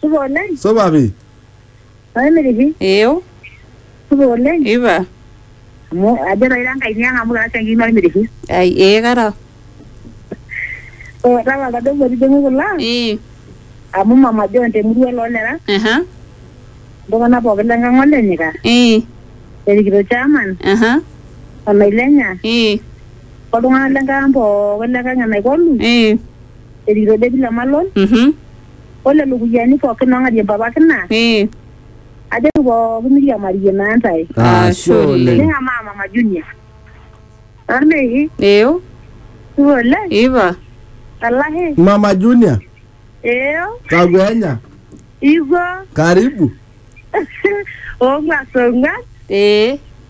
Supa oleng. Supa pi. Maimiri pi. Eeu. Supa oleng. Ipa. Amu ajo taa ira enkae niang amu kara siankiki Maimiri pi. Ai ee kara. Oo tapala tadou motijing'u kulo ang. Ii. Amu Mama John te murua loo lera. Aha. Iltung'ana pooki le nkang olenyika. Ii. Erikito chairman. Aha. O Nailenya. Ii. Oltung'ana le nkang pooki le nkang e Naikolu. Ii. Erikito Debby Lemalon. Mhm. o lelo kuyiani pookin oong'arie mpapaki naa Ee. ajoki pooki miriamarie naa ntae Ashe oleng. ning'amaa mama junior ormeiki Eyo. supa oleng Ipa. alahi Mama Junior, eo kakwenya, iko karibu. oong'uan song'uan Ee.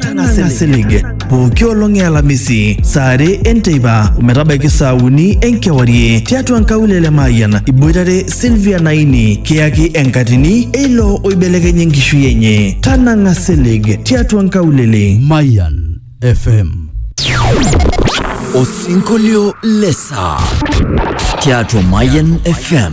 Tang'asa silig pooki olong e Alamisi saa are enteipa ometabaiki saa uni enkewarie tiatua nkaulele Mayian iboitare Sylvia Naini kiyaki enkatini eilo oibelekenya enkishui enye. Tanang'a silig tiatua nkaulele. Mayan FM. Osinkolio lesa tiatua Mayan FM.